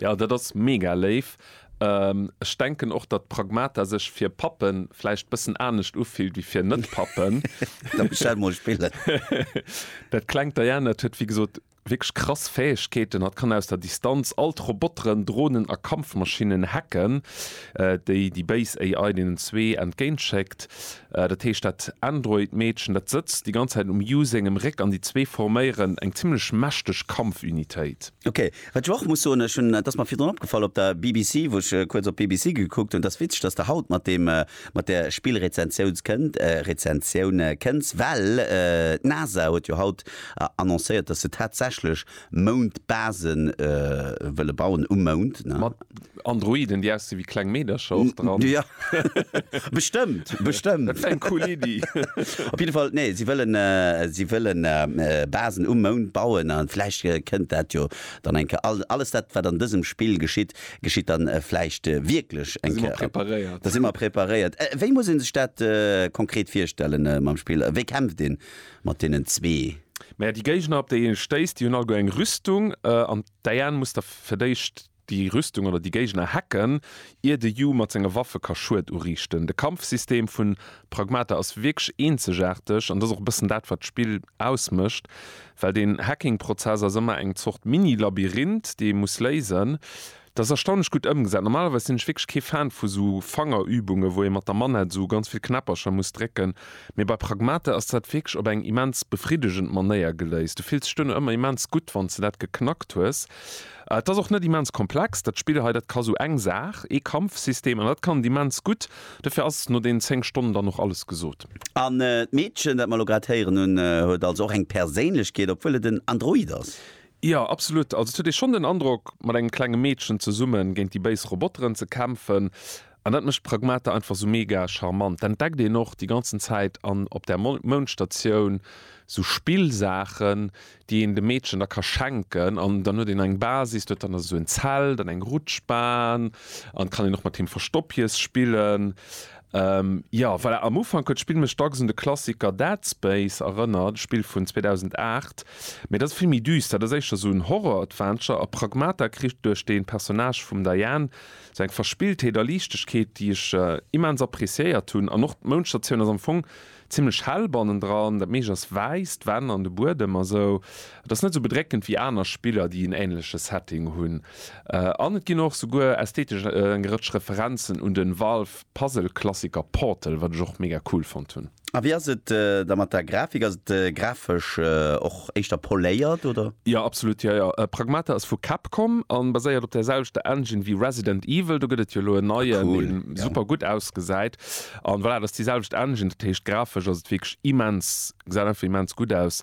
Jo dat ass mega léif. Ech denken och datt Pragmata sech fir Pappen vläicht bëssen anescht ufillt wéi fir net Pappen. Da bestell mol Spillen. Dat klengt Diana huet wéi gesot wierklech krass Fäegkeeten. Hatt kann aus der Distanz all d'Roboteren, Dronen a Kampfmaschinnen hacken, déi déi béis AI deenen zwee entgéint schéckt. Dat heescht dat Android Meedchen dat sëtzt déi ganz Zäit um Yu sengem Réck an déi zwee forméieren eng zimmlech mächteg Kampfunitéit. Ok, Wat ech och muss soen, ech hunn, et ass mer virdrun opgefall op der BBC, wou ech kuerz op d'BBC gekuckt hunn, et ass witzeg, dass de haut mat deem, mat där Spillrezensiouns kënnt, Rezensioun kënns, well d'NASA huet jo haut annoncéiert, dass se tatsächlech Moundbase wëlle bauen, um Mound, ne? Androiden déi aussinn wéi kleng Meedercher och dran. Jo, bestëmmt, bestëmmt. Dat wär eng cool Iddi. Op jidde Fall, nee, si wëllen, si wëlle Basen um Mound bauen a vläicht kënnt dat jo dann eng Kéier. All, alles dat, wat an dësem Spill geschitt, geschitt dann vläicht wierklech eng Kéier. Da si mer preparéiert. Da si mer preparéiert. Wéi muss ee sech dat konkret virstellen mam Spill? Wéi kämpft ee mat deenen zwee? Mä déi Géigner, op déi ee stéisst, déi hunn alleguer eng Rüstung an d'AN muss da fir d'éischt. déi Rüstung oder déi Géigner hacken, ier de Yu mat senge Waffe ka Schued uriichten. De Kampfsystem vun Pragmata ass wierklech eenzegaarteg an dat ass och e bëssen dat wat d'Spill ausmécht, well den Hacking-Prozess ass ëmmer eng Zort Mini-Labyrinth déi ee muss léisen. Dat ass erstaunlech gutt ëmgesat. Normalerweis sinn ech wierklech kee Fan vu sou Fangerübunge wou ee mat der Manette sou ganz vill Knäppercher muss drécken, mee bei Pragmata ass dat wierklech op eng immens befriddegend Manéier geléist. Du fills dech duerno ëmmer immens gutt wann s de dat geknackt hues. Et ass och net immens komplex, dat Spill hei. Dat ka sou eng Saach, ee Kampfsystem, an dat kann et immens gutt. Dofir ass no deenen 10 Stonnen dann och alles gesot. An d'Meedchen, dat mer elo grad héieren hunn, huet also och eng Perséinlechkeet, obwuel et en Android ass? Jo, absolut. Also et huet ee schonn den Androck, mat engem klenge Meedchen zesumme géint déi béis Roboteren ze kämpfen. An dat mécht d'Pragmata einfach sou mega charmant. D'entdeckt een och déi ganzen Zäit an op där Moundstatioun sou Spillsaachen, déi een de Meedchen da ka schenken. An dann huet een eng Basis, huet dann also sou en Zelt an eng Rutschbahn an kann een och mat him Verstoppjes spillen. Jo, voilà, am Ufank huet d'Spill mech dacks un de Klassiker Dead Space erënnert, e Spill vun 2008. Mee dat ass vill méi düster, dat ass éischter sou en Horror-Adventure. A Pragmata kritt duerch de Personnage vum Diane Sou eng Verspilltheet a Liichtegkeet, déi ech immens appreciéiert hunn. An och d'Moundstatioun ass am Fong zimmlech hell bannendran, dat meescht ass wäiss, d'Wänn an de Buedem a sou. Et ass net sou bedréckend wéi aner Spiller, déi en änleche Setting hunn. An et ginn och souguer ästhetesch eng Rëtsch Referenzen un de Valve-Puzzle-Klassiker Portal, wat ech och mega cool fonnt hunn. A wéi ass et da mat der Grafik? Ass et grafesch och éischter poléiert, oder? Jo, absolut, jo, jo. Pragmata ass vu Capcom a baséiert op der selwechter Engine wéi Resident Evil. Do gëtt et jo elo en neien, dee super gutt ausgesäit. A voilà, et ass déi selwecht Engine, dat heescht grafesch ass et wierklech immens, gesäit einfach immens gutt aus.